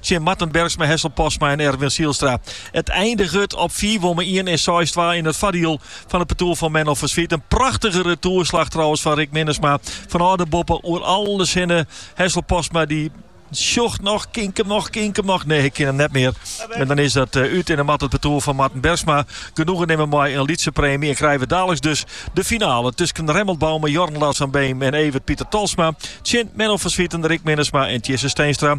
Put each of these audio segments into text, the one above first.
tsjin Marten Bergsma, Hessel Postma en Erwin Zijlstra. It eindiget op fiif om ien en seis twa yn it foardiel fan it partoer fan Menno van Zwieten. In prachtige retoerslach trouwens fan Rick Minnesma fanôf de boppe oer alles hinne. Hessel Postma dy sjocht noch, kin 'k him noch, kin 'k him noch. Nee, ik kin him net mear. En dan is dat uh, út en dan moat it partoer fan Marten Bergsma genoegen nimme mei in lytse preemje. En krije we daliks dus de finale tusken Remmelt Bouma, Jorn Lars van Beem en Evert Pieter Tolsma tsjin Menno van Zwieten, Rick Minnesma en Tjisse Steenstra.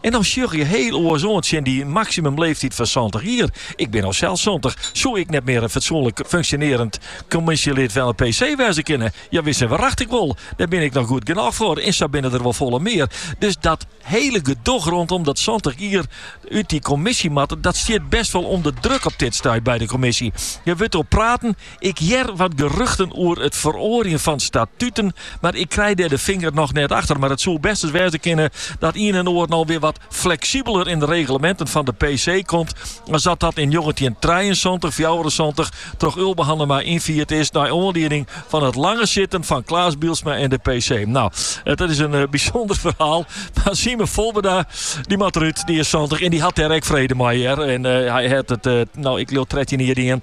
En dan sjogge je hiel oars oan tsjin dy maksimumleeftyd fan santich jier. Ik bin no sels santich. Soe ik net mear in fatsoenlik funksjonearjend kommisjelid fan 'e PC wêze kinne? Jawis, wrachtich wol. Dêr bin ik noch goed genôch foar. En sa binne der wol folle mear. Dus dat hiele gedoch rondom dat santich jier út dy kommisje moatte, dat stiet best wol ûnder druk op dit stuit by de kommisje. Der wurdt oer praten. Ik hear wat geruchten oer it feroarjen fan statuten, mar ik krij dêr de finger noch net achter. Mar it soe bêst ris wêze kinne dat ien en oar no wer wat fleksibeler yn de regleminten fan de PC komt as dat dat yn njoggentjintrijeensantich, fjouwerensantich troch Ulbe Hannema ynfierd is nei oanlieding fan it lange sitten fan Klaas Bijlsma yn de PC. Nou, dat is in bysûnder ferhaal, mar Simon Volbeda dy moat derút, dy is santich en dy hat dêr ek frede mei hear en hy hat it no, ik leau trettjin jier dien.